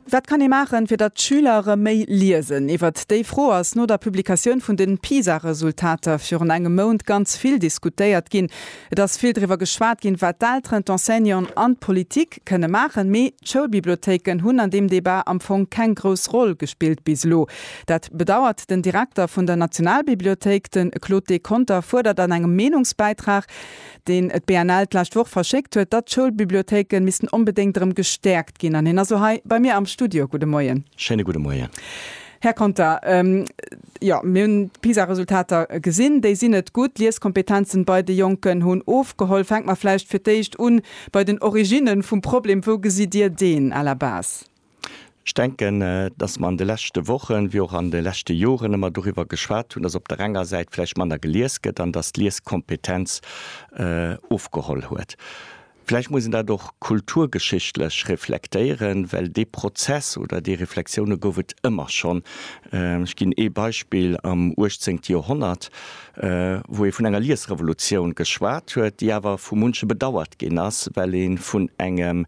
Wat kann ee maachen, fir datt d'Schüler erëm méi liesen? Iwwert déi Fro ass no der Publikatioun vun de PISA-Resultater virun engem Mount ganz vill diskutéiert ginn. Et ass vill driwwer geschwat ginn, wat d'Elteren, d'Enseignanten an d'Politik kënne maachen. Mee d'Schoulbibliothéiken hunn an deem Debat am Fong keng grouss Roll gespillt bis elo. Dat bedauert den Direkter vun der Nationalbibliothéik, de Claude Deconther fuerdert an engem Meenungsbäitrag, deen et BNL d'lescht Woch verschéckt huet, datt d'Schoulbibliothéike missten onbedéngt erëm gestäerkt ginn. An hien ass elo hei bei mir am Studio. Gudde Moien. Schéine gudde Moien. Här Conter, jo, mir hunn d'PISA-Resultater gesinn. Déi sinn net gutt. D'Lieskompetenzen bei de Jonken hunn ofgeholl. Fänke mer vläicht fir d'éischt un bei den Originnen vum Problem. Wou gesitt Dir deen à la base? Ech denken, dass mer an de leschte Wochen, wéi och an de leschte Joren ëmmer doriwwer geschwat hunn, dass op der enger Säit vläicht manner gelies gëtt an dass d'Lieskompetenz ofgeholl huet. Vläicht muss een dat och kulturgeschichtlech reflektéieren, well dee Prozess oder déi Reflexioune gouf et ëmmer schonn. Ech ginn ee Beispill, Am uechtzéngte Joerhonnert, wou ee vun enger Liesrevolutioun geschwat huet, déi awer vu munche bedauert ginn ass, well ee vun engem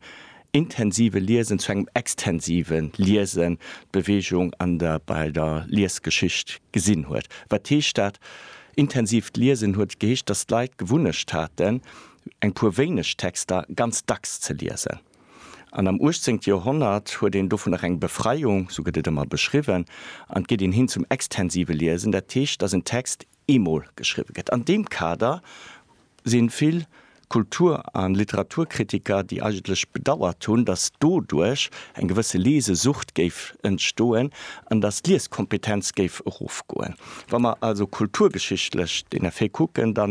intensive Liesen zu engem extensive Liesen d'Beweegung an der bei der Liesgeschicht gesinn huet. Wat heescht dat? Intensivt Liesen huet geheescht, datt d'Leit d'Gewunnecht haten, eng puer wéineg Texter ganz dacks ze liesen. An am 18. Joerhonnert huet een dovun nach eng Befreiung, sou gëtt et ëmmer beschriwwen, an et geet een hin zum extensive Liesen, dat heescht, datt en Text eemol geschriwwe gëtt. An deem Kader si vill Kultur a Literaturkritiker, déi eigentlech bedauert hunn, datt doduerch eng gewësse Lesesucht géif entstoen an datt d'Lieskompetenz géif erofgoen. Wa mer also kulturgeschichtlech den Effet kucken, da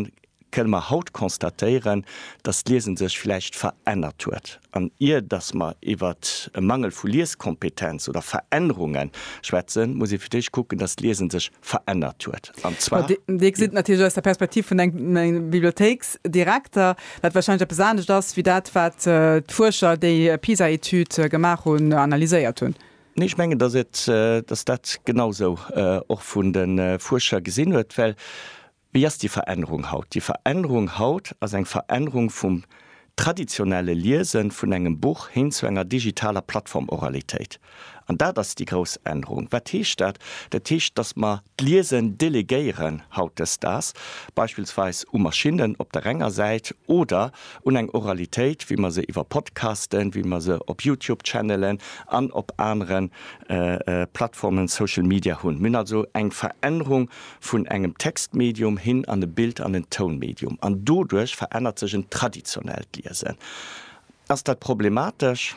kënne mer haut constatéieren, dass d'Liesen sech vläicht verännert huet. An ier dass mer iwwert e Mangel vu Lieskompetenz oder Verännerunge schwätzen, muss ee fir d'éischt kucken, dass d'Liesen sech verännert huet. An zwar. Dir gesitt natierlech aus der Perspektiv vun engem Bibliothéiksdirekter, dat warscheinlech eppes anescht ass wéi dat, wat d'Fuerscher, déi d'PISA-Etüd gemaach hunn, analyséiert hunn. Nee, ech mengen, dass dat genau esou och vun de Fuerscher gesinn huet, well Wéi ass déi Verännerung haut? Déi Verännerung haut ass eng Verännerung vum traditionelle Liese vun engem Buch hin zu enger digitaler Plattform-Oralitéit. An dat ass déi grouss Ännerung. Wat heescht dat? Dat heescht, dass mer d'Liesen delegéieren hautdesdaags, beispillsweis u Maschinnen op der enger Säit oder un eng Oralitéit, wéi mer se iwwer Podcasten, wéi mer se op YouTube-Channelen an op anere Plattformen, Social Media hunn. Mir hunn also eng Verännerung vun engem Textmedium hin an e Bild an en Tounmedium, an doduerch verännert sech en traditionellt Liesen. Ass dat problematesch?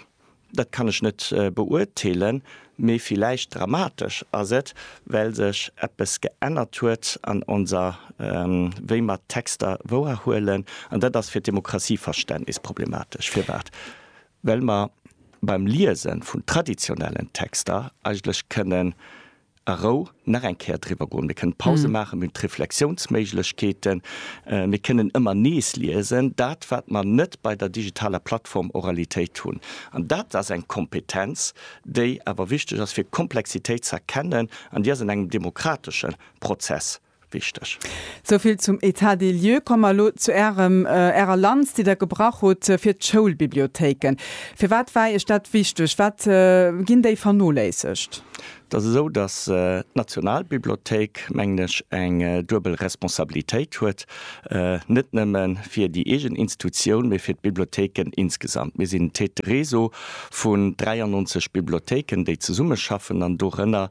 Dat kann ech net beurteelen, mee villäicht dramatesch ass et, well sech eppes geännert huet an onser wéi mer d'Texter wouerhuelen, an dat ass fir d'Demokratie-Verständnis problematesch. Firwat? Well mer beim Liese vun traditionellen Texter eigentlech kënnen a Rou nach eng Kéier driwwer goen. Mir kënnen Pause maachen, mir hunn d'Reflexiounsméiglechkeeten, mir kënnen ëmmer nees liesen, dat wat mer net bei der digitaler Plattform Oralitéit hunn. An dat ass eng Kompetenz, déi awer wichteg ass fir Komplexitéit ze erkennen an déi ass an engem demokratesche Prozess Wichteg. Souvill zum État des lieux. Komme mer elo zu Ärem, Ärer Lanz, déi Der gebrach hutt fir d'Schoulbibliothéiken. Firwat war Iech dat wichteg? Wat ginn déi vernoléissegt? Et ass esou, datt d'Nationalbibliothéik, mengen ech, eng duebel Responsabilitéit huet, net nëmme fir déi eegen Institutioun, mee fir d'Bibliothéiken insgesamt. Mir sinn Tête de réseau vun 93 Bibliothéiken, déi zesummeschaffen, an dorënner